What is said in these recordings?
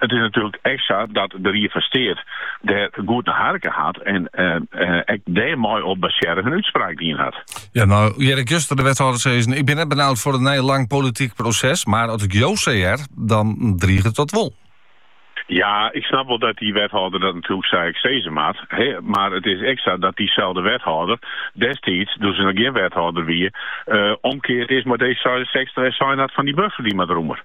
It is natuerlik ek sa dat de Ried fan Steat dêr goed nei harke hat en ek dêrmei op basearre in útspraak dien hat. Ja, no hear ik juster de wethâlder sizzen, ik bin net benaud foar in nij lang polityk proses, mar as ik jo sa hear, dan driget dat wol. Ja, ik snap wol dat dy wethâlder dat natuerlik sa ek sizze moat, mar it is ek sa dat dyselde wethâlder destiids, doe't se noch gjin wethâlder wie, omkeard is mei D66 en sein hat fan dy buffer dy moat rûmer.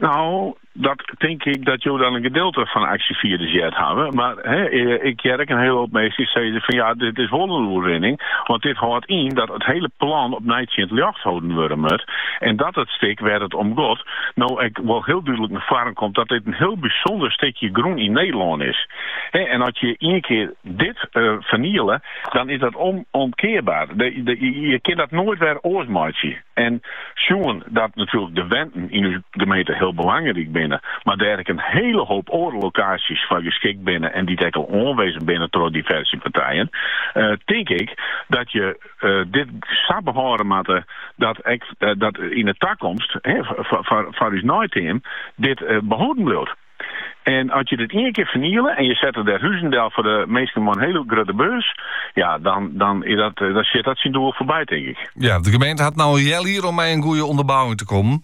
No, dat tink ik dat jo dan in gedeelte fan 'e aksjefierders heard hawwe, mar ik hear ek in hiele hoop minsken sizze fan ja, dit is wol in oerwinning, want dit hâldt yn dat it hiele plan opnij tsjin it ljocht holden wurde moat en dat it stik wêr't it om got no ek wol hiel dúdlik nei foaren komt dat dit in hiel bysûnder stikje grûn yn Nederlân is. En as je ien kear dit ferniele, dan is dat onomkearbaar. Je kinne dat noait wer oars meitsje. En sjoen dat natuerlik de wenten yn ús gemeente hiel belangryk binne, mar dêr ek in hiele hoop oare lokaasjes foar geskikt binne en dy't ek al oanwizzen binne troch diverse partijen, tink ik dat je dit sa behâlde moatte dat ek dat yn 'e takomst foar ús neiteam dit behâlden bliuwt. En as je dit ien kear ferniele en je sette dêr huzen del foar de minsken mei in hiele grutte beurs, ja, dan, dan, is dat, eh, dan sjit dat syn doel foarby, tink ik. Ja, de gemeente hat no in heal jier om mei in goede ûnderbouwing te kommen.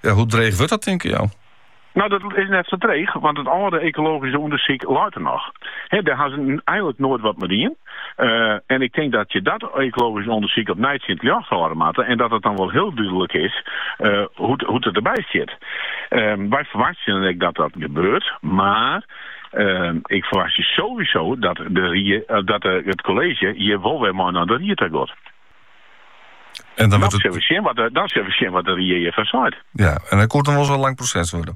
Ja, hoe dreech wurdt dat, tinke jo? No, dat is net sa dreech, want it âlde ekologyske ûndersyk leit der noch. He, dêr ha se eigenlik noait wat mei dien. en ik tink dat je dat ekologysk ûndersyk opnij tsjin it ljocht hâlde moatte en dat it dan wol hiel dúdlik is hoe't it derby stiet. Wy ferwachtsjen dan ek dat dat gebeurt, mar ik ferwachtsje sowieso dat it kolleezje hjir wol wer mei nei de ried ta giet. Dan sille we sjen wat de ried hjirfan seit. Ja, en dat koe dan wol ris in lang proses wurde.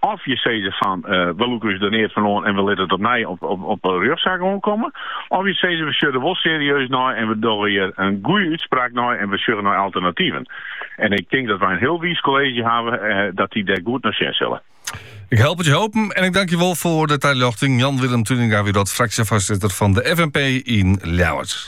Of je sizze fan, we lûke ús der neat fan oan en we litte it opnij op in rjochtsaak oankomme. Of je sizze, we sjogge der wol serieus nei en we dogge hjir in goede útspraak nei en we sjogge nei alternativen. En ik tink dat wy in hiel wiis kolleezje hawwe dat dy dêr goed nei sjen sille. Ik help it jo hoopjen en ik tank jo wol foar de taljochting. Jan-Willem Tuininga wie dat, fraksjefoarsitter fan de FNP yn Ljouwert.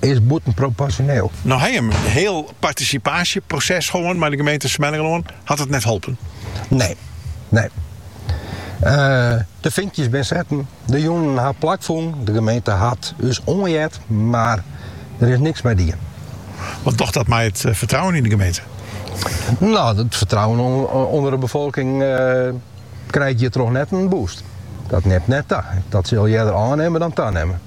is bûtenproporsjoneel. No ha jim in hiel partisipaasjeproses hân mei de gemeente Smellingerlân, hat it net holpen. Nee, nee. Eh, de finkjes binne setten, de jûnen ha plak fûn, de gemeente hat ús oanheard, mar der is niks mei dien. Wat docht dat mei it eh, fertrouwen yn de gemeente? No, it fertrouwen ûnder de befolking eh, krijt hjirtroch net in boost. Dat nimt net ta. Dat sil earder ôfnimme dan tanimme.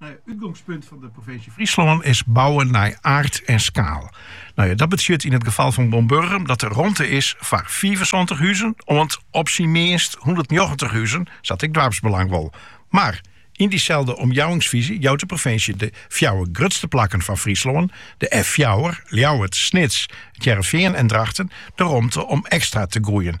It útgongspunt fan de provinsje Fryslân is bouwen nei aard en skaal. Nou ja, dat betsjut yn it gefal fan Boarnburgum dat der romte is foar fiifensantich huzen oant op syn meanst hûndertnjoggentich huzen, sa't ek doarpsbelang wol. Mar yn dyselde omjouwingsfyzje jout de provinsje de fjouwer grutste plakken fan Fryslân, de F fjouwer, Ljouwert, Snits, It Hearrenfean en Drachten, de romte om ekstra te groeien.